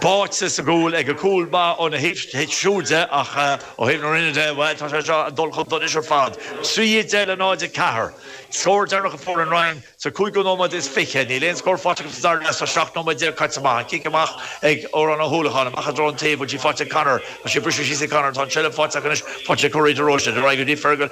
báite sa gcúl, agus cúl maith óna thaobh siúd de, ach ó thaobh na Rinne de, bhuel, tá sé seo ag dul chun donais ar fad. 3:10 le 0, 4. Scór deireanach a fuair an Rinn sa cúigiú nóiméad is fiche. Níl aon scór faighte acu sa dara leath is seacht nóiméad déag caite amach. An cic amach ag Odhrán Ó hUallacháin, amach i dtreo an taobh, bhfuil sí faighte ag Connor? Tá sí ag briseadh síos ag Connor, tá an seilbh faighte acu anois, faighte ag Corey de Róiste, ar aghaidh go dtí Fergal,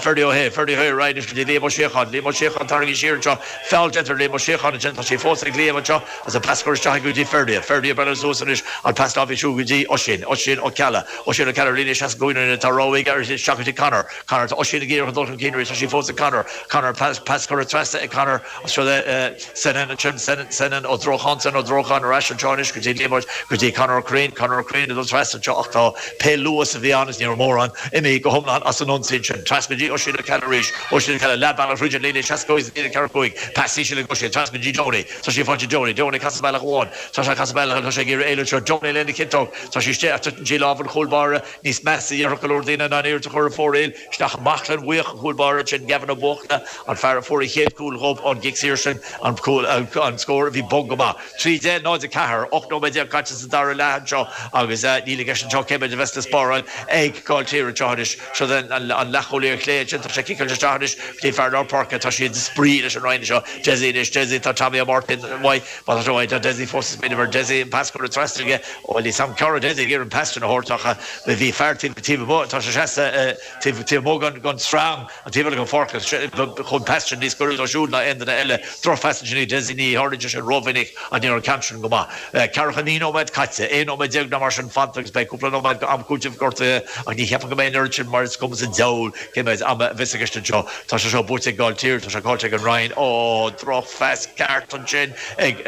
Ferdia Ó hAodha, Ferdia Ó hAodha, ar aghaidh anois go dtí Liam Ó Síocháin, Liam Ó Síocháin, tarraingíodh siar anseo, feall déanta ar Liam Ó Síocháin ansin, tá sí fós ag Liam anseo, As an pas curtha isteach go dtí Ferdia, Ferdia Brothers Suas anois an Pas Dá bhisiú go dtí Oisín, Oisín Ó Ceallaigh, Oisín Ó Ceallaigh Líne seasca cúig Uaine-Uine Tá rogha aige uirthi isteach go dtí Conor, Conor Tá Oisín ag iarraidh dul chun cinn arís Tá sí fós ag Conor, Conor Pas, Pas curtha trasna ag Conor as seo le Senan ansin, Senan, Senan Ó Drócháin, Senan Ó Drócháin Ar ais anseo anois go dtí Liam Óg go dtí Conor Ó Cuirrín, Conor Ó Cuirrín Ag dul trasna anseo ach tá pé luas a bhí ann is ní raibh mórán, imithe go hiomlán as an ionsaí ansin, trasna go dtí Oisín Ó Ceallaigh arís, Oisín Ó Ceallaigh Leath bealaigh idir an líne seasca cúig is an líne ceathracha cúig, Pas íseal ag Oisín, trasna go dtí Tony. Tá sí faighte ag Donie, Donie ag casadh bealach amháin, tá sé ag casadh bealach eile, tá sé ag iarraidh éalú seo, Donie lena chiotóg, tá sí istigh ach titeann sí i lámha an chúl báire níos measa, a dhéarfadh go leor daoine, ná an iarracht a chuir ar fóraoil isteach i mbaclainn bhuíoch an chúl báire sin, Gavin Ó Buachalla, an fear a fuair an chéad chúl dhóibh ón gcic saor sin, an scór a bhí bog go maith. Trí deich, náid a ceathair, 18 nóiméad caite sa dara leath anseo agus níl i gceist anseo ach cé mhéid a bheas le spáráil ag Gaill Tír anseo anois. Seo é an leathchúlaí ar chlé ansin, tá sé ag ciceáilt isteach anois go dtí fear lár páirce, tá siad ag spraoi leis an Rinn seo, Desi, anois Desi, tá Tommy Ó Máirtín uaidh, má tá sé uaidh, tá Desi fós, is míle uimhir Desi, an pas curtha trasna aige, ó bhuel, níl 's a'm céard a bhí Desi ag iarraidh an pas sin a thabhairt ach bhí fear taobh, taobh amuigh, tá sé seasta taobh, taobh amuigh gon, gon srang an taobh eile gon pháirc agus chuaigh an pas sin níos gaire dó siúd ná aon duine eile, drochphas ansin ag Desi, ní tharlaíonn sé sin ró-mhinic ach ní raibh an ceann sin go maith. Ceathracha naoi nóiméad caite, aon nóiméad déag nó mar sin fanta agus beidh cúpla nóiméad go am cúitimh gortuithe ach ní cheapaim go mbeidh an oiread sin mar is cuma sa diabhal cé mhéid ama a bheas i gceist anseo. Tá sé seo buaite ag Gaill Tír, tá sé caillte ag an Rinn. Ó, drochphas ceart ansin ag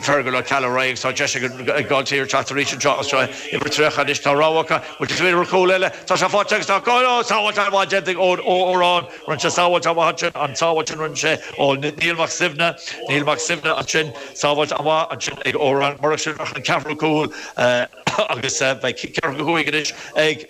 Fergal Ó Ceallaigh, Ray agus tá deis ag Gaill Tír teacht arís anseo as seo uimhir 30 anois. Tá rogha acu, bhuel, is féidir cúl eile, tá sé faighte agus tá cáil, ó, sábháilt mhaith déanta ag, ó, Odhrán. Rinne sé sábháilt mhaith ansin, an tsábháilt a rinne sé ó Niall Mac Suibhne, Niall Mac Suibhne ansin, sábháilt mhaith ansin ag Odhrán. Murach sin, bheadh an ceathrú cúl agus bheadh ceathracha cúig anois ag.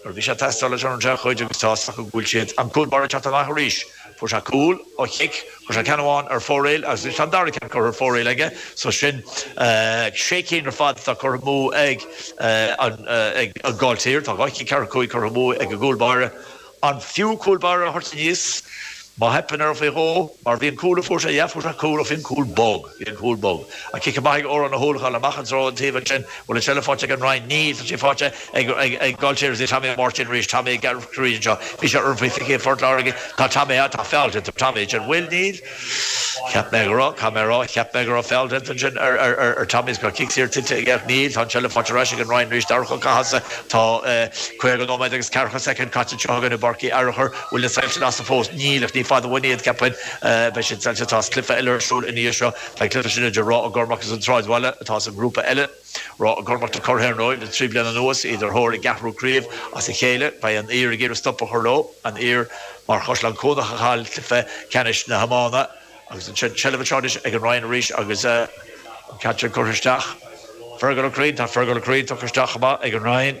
Nuair a bhí sé ag teastáil leis an dea chuid, agus tá's acu go bhfuil siad, an cúl báire ag teacht amach arís, fuair sé cúl ó chic, chuir sé ceann amháin ar fóraoil agus anois tá an dara ceann curtha ar fóraoil aige, so sin sé cinn ar fad atá curtha amú ag Gaill Tír, tá dhá chic ceathracha cúig curtha amú ag an gcúl báire. An fiú cúl báire a thabhairt aníos? Má theipeann orm faoi dhó, mar bhí an cúl a fuair sé, yeah, fuair sé cúl, ó bhí an cúl bog, bhí an cúl bog. Ach cic amach ag Odhrán Ó hUallacháin amach i dtreo an taobh ansin, bhfuil an seilbh faighte ag an Roinn? Níl, tá sé faighte ag, ag, ag Gaill Tír agus ag Tommy Ó Máirtín arís, Tommy ag Gearailt Chroí anseo, bhí sé orm faoi phicéad i bPort Láirge, tá Tommy, ah, tá feall déanta ar Tommy ansin, bhfuil, níl? Cheap mé go raibh, caithfidh mé a rá, cheap mé go raibh feall déanta ansin ar, ar, ar, ar Tommy, is go raibh cic saor tuillte aige, ach níl, tá an seilbh faighte arís ag an Rinn arís, d'amharc chun catha sa, tá, eh, caoga nóiméad agus ceathracha soicind caite anseo againn i bPáirc Uí Fhearchair, bhfuil na soilse lasta fós? Níl, ach ní fada uainn iad, ceapaim. Beidh siad soilse. Tá cluiche eile ar siúl ina dhiaidh seo. Tá an cluiche sin idir Ráth Ó gCormaic is an tSráidbhaile atá as an ngrúpa eile. Ráth Ó gCormaic na curaidh ar ndóigh le trí bliana anuas, iad ar thóir a gceathrú craobh as a chéile. Beidh an Uidhir ag iarraidh stop a chur leo, an Uidhir mar Chaisleán Cuanach a chaill cluiche ceannais na hiomána. Agus an seilbh anseo anois ag an Rinn arís agus an ceann sin curtha isteach. Fearghal Ó Cuirrín, tá Fearghal Ó Cuirrín tugtha isteach chomh maith ag an Rinn.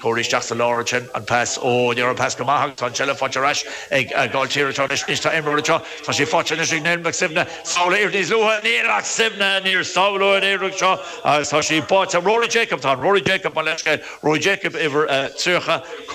Cur isteach sa lár ansin, an pas, óóó ní raibh an pas go maith agus tá an tseilbh faighte ar ais ag Gaill Tír anseo anois, anois tá imreoir anseo, tá sé faighte anois ag Niall Mac Suibhne, sábháladh air níos luaithe, Niall Mac Suibhne, níor sábháladh an uair seo agus tá sé báite, Rory Jacob, tá an Rory Jacob, mo leithscéal, Rory Jacob uimhir a 30,